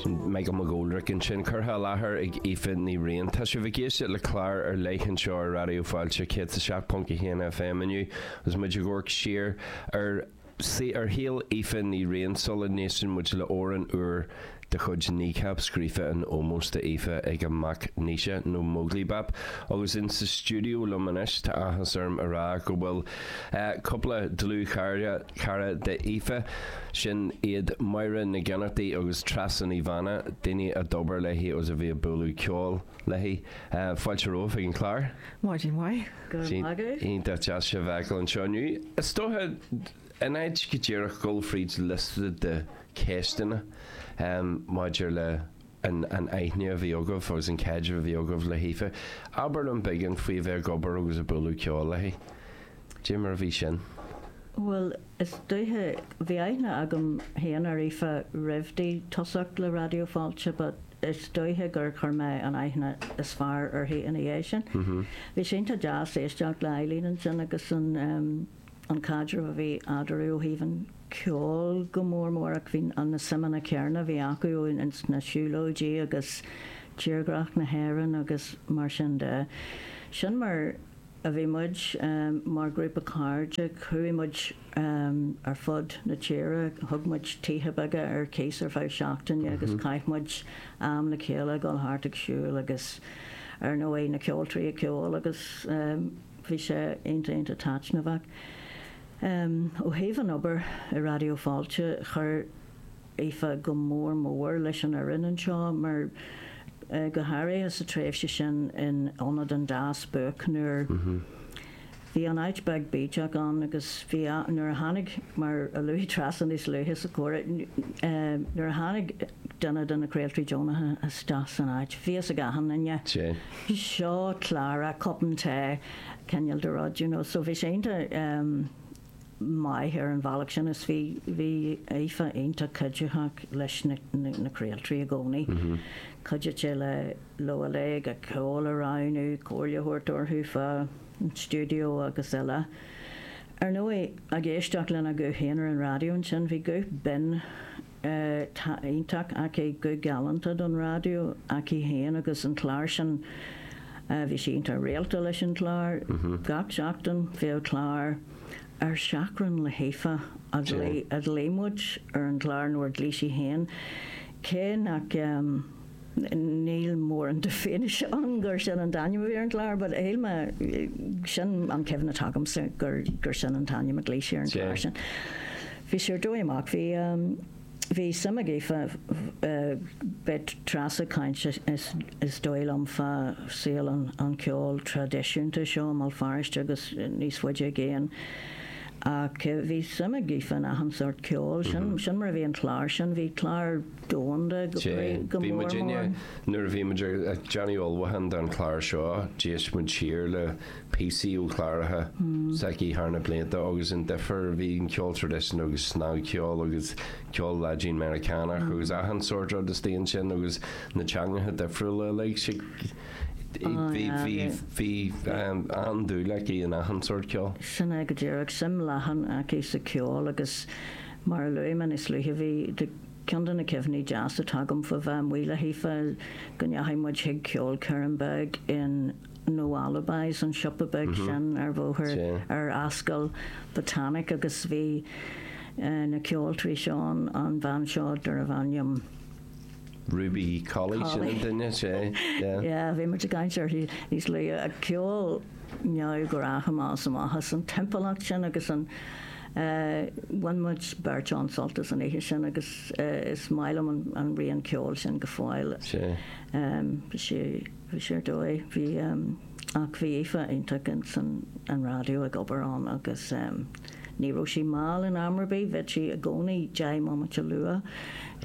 Michael McGoldrick ansin, curtha i láthair ag Aoife Ní Riain. Tá sibh ag éisteacht le clár ar leith anseo ar Raidió Fáilte 107.1 FM inniu agus muid ag amharc siar ar ar shaol Aoife Ní Riain sula n-éisteann muid le amhrán úr de chuid Kneecap scríofa in ómós d'Aoife ag a mac Naoise, nó Móglaí Bap. Agus in sa stiúideo liom anois, tá áthas orm a rá go bhfuil cúpla dlúthchara, Cara d'Aoife sin iad Máire Nic Fhionnachtaigh agus Treasa Ní Mhána, daoine a d'obair léi agus a bhí ag bualadh ceoil léi. Fáilte romhaibh ag an chlár. Maidin mhaith. Go raibh maith agat. Iontach deas sibh a fheiceáil anseo inniu. Is dóiche, in áit go díreach dul fríd liosta de cheisteanna maidir le an an aithne a bhí agaibh agus an caidreamh a bhí agaibh le hAoife. Abair liom beagán faoi a bheith ag obair agus ag bualadh ceoil léi. Dé mar a bhí sin? Bhuel, is dóiche, bhí aithne agam féin ar Aoife roimh di tosacht le Raidió Fáilte but is dóiche gur chuir mé an aithne is fearr uirthi ina dhiaidh sin. Bhí sé iontach deas éisteacht le Eileen ansin agus an, an caidreamh a bhí eadarthu ó thaobh an cheoil go mór mór ach bhí na suimeanna céarna a bhí acu ins na siúlóidí agus tírdhreach na hÉireann agus mar sin de. Sin mar a bhí muid mar ghrúpa cairde. Chuaigh muid ar fud na tíre. Thug muid tithe beaga ar cíos ar feadh seachtaine agus chaith muid am le chéile ag dul thart ag siúl agus ar ndóigh na ceoltóirí ag ceol agus Bhí sé iontach iontach taitneamhach. Ó thaobh an obair i Raidió Fáilte, chuir Aoife go mór mór leis an fhoireann anseo mar go háirithe sa tréimhse sin in Ionad an Dá Spuaic nuair a bhí an áit beag bídeach againn agus bhí nuair a tháinig, mar a luaigh Treasa níos luaithe sa comhrá, nuair a tháinig. duine de na craoltóirí deonacha isteach san áit. Bhí a fhios ag achan duine anseo, Clara, cupán tae, cineál de rud, you know. So bhí sé iontach maith ar an bhealach sin is bhí, bhí Aoife iontach cuiditheach leis na, na, na craoltóirí i gcónaí. Chuidigh sí le, leo uilig, ceol a roghnú, comhairle a thabhairt orthu fán stiúideo agus eile. Ar ndóigh, ag éisteacht lena guth féin ar an raidió ansin, bhí guth binn, Tá iontach aici, guth galánta don raidió aici féin agus an clár sin, bhí sí iontach rialta leis an chlár. Gach seachtain bheadh clár ar Seachrán le hAoife, a ghlaoigh muid ar an chlár nó a ghlaoigh sí féin, cé nach. Níl mórán d'fhianaise ann gur sin an t-ainm a bhí ar an gclár, but Ailme, sin an cuimhne atá agamsa gur, gur sin an t-ainm a glaoigh sí ar an gclár sin. Bhí sé ar dóigh amach, bhí um, bhí suim ag Aoife, uh, beidh Rossa ag caint is, is, is dóigh liom fa saol an, an cheoil traidisiúnta seo i mBéal Feirste agus níos faide i gcéin. Ach bhí suim ag Aoife in achan sort ceoil sin, mm -hmm. sin mar a bhí an chlár sin, bhí chlár Sea, bhí muid inné, nuair a bhí muid ag déanamh ullmhúchán don chlár seo, d'éist muid siar le píosaí ó chláracha s'aici thar na blianta agus an difear a bhí an ceol traidisiúnta agus snagcheol agus ceol Laidin Meiriceánach agus achan sort rud istigh ansin agus na teangacha difriúla uilig, sí, bhí, bhí, bhí an-dúil aici in achan sort ceol. Sin é go díreach, suim leathan aici sa cheol agus mar a luaigh mé níos luaithe bhí, Ceann de na cuimhní deasa atá agam faoi bheith amuigh le hAoife go ndeachaigh muid chuig ceolchoirm bheag in No Alibis, an siopa beag sin ar bhóthar ar Ascaill Botanic agus bhí na ceoltoirí seo ann, an bhean seo darbh ainm. Ruby Colley, sin an duine, is ea? Yeah, bhí muid ag caint uirthi níos luaithe. Ceol neamhghnách a d'fhás amach as an timpeallacht sin agus an Bhain muid beirt an-sult as an oíche sin agus is maith liom an rian ceoil sin go fóill. Bhí sé, bhí sé ar dóigh. Bhí, ach bhí Aoife iontach ins an, an raidió ag obair ann agus ní raibh sí mall in am ar bith, bheadh sí i gcónaí deich mbomaite luath.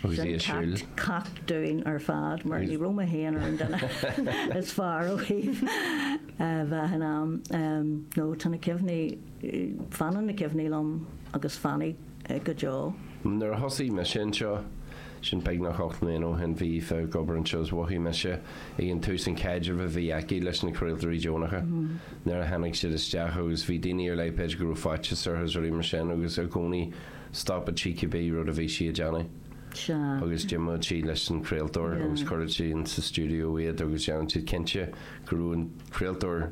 Sin ceacht, ceacht dúinn ar fad mar ní raibh mé féin ar an duine is fearr ó thaobh bheith in am. No, tá na cuimhní. Fanann na cuimhní liom agus fanfaidh go deo. Nuair a thosaigh mise anseo, sin beagnach ocht mbliana ó shin, bhí Aoife ag obair anseo agus mhothaigh mise ag an tús an caidreamh a bhí aici leis na craoltóirí deonacha. Nuair a tháinig siad isteach agus bhí daoine ar leith, b'fhéidir, go raibh faitíos orthu is rudaí mar sin agus i gcónaí stopadh sí cibé rud a bhí sí ag déanamh agus d'imíodh sí leis an chraoltóir agus chuireadh sí ins sa stiúideo iad agus dhéanadh sí cinnte go raibh an craoltóir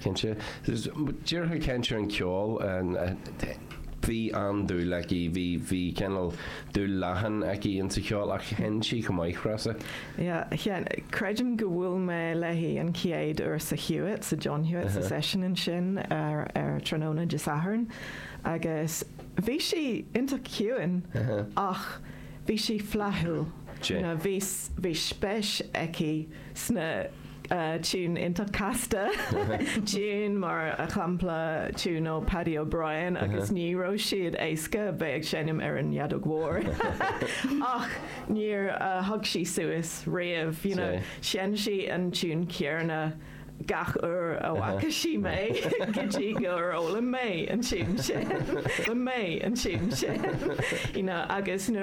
Cinnte. Díreach ag caint ar an cheol, bhí an-dúil aici, bhí, bhí cineál dúil leathan aici ins an cheol ach sheinn sí chomh maith, Rossa. Yeah, creidim gur bhuail mé léi an chéad uair sa Hewitt, sa John Hewitt, sa seisiún ansin ar, ar tráthnóna Dé Sathairn agus bhí sí iontach ciúin ach bhí sí flaithiúil. Bhí, bhí spéis aici. sna tiúin iontach casta, tiúin mar shampla tiún ó Paddy O'Brien agus ní raibh siad éasca, bheith ag seinm ar an fheadóg mhór ach níor thug sí suas riamh, you know, sheinn sí an tiún céarna gach uair a bhfaca sí mé go dtí gur fhoghlaim mé an tiún sin, mé an tiún sin, you know, agus nuair.